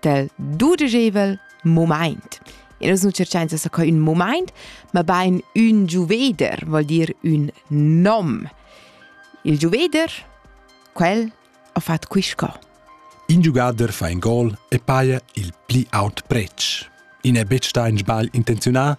del dudegevel moment. E nus nu cerchains da co ün moment, ma bain ün giuveder, vol dir ün nom. Il giuveder, quel ha fatto quisco. In giugader fa in gol e paia il pli aut pretsch. I n'è betg sta in sbagl intenzionà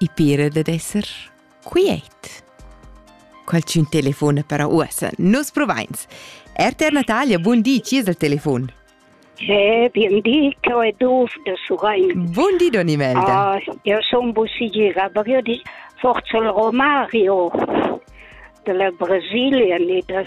I pira dad esser quiet. Qualchün telefona para uossa, nus provains. RTR Natalia, bun di, chi es al telefon? Eh, bien di, che è Duf de Surain. Bun di, Don Imelda. Ah, io sono Bussigira, ma io di forse il Romario della Brasilia, ni de...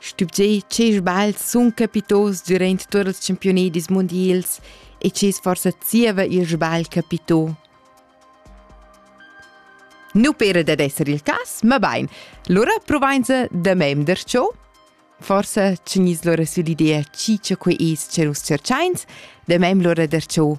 Stübgiei che sbagls sun capitos durant tuot ils championedis mundials e che forsa zieva ir sbagl capito. Nu pera dad esser il cas, ma bain. Lura provainsa da memder ciò. Forsa tgni's lura süll'idea chi cha quai es cha nus tscherchains, da mem lura der ciò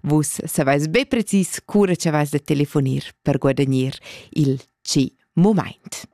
Vus saveis be precis cura che vais da telefonir per guadagnir il C moment.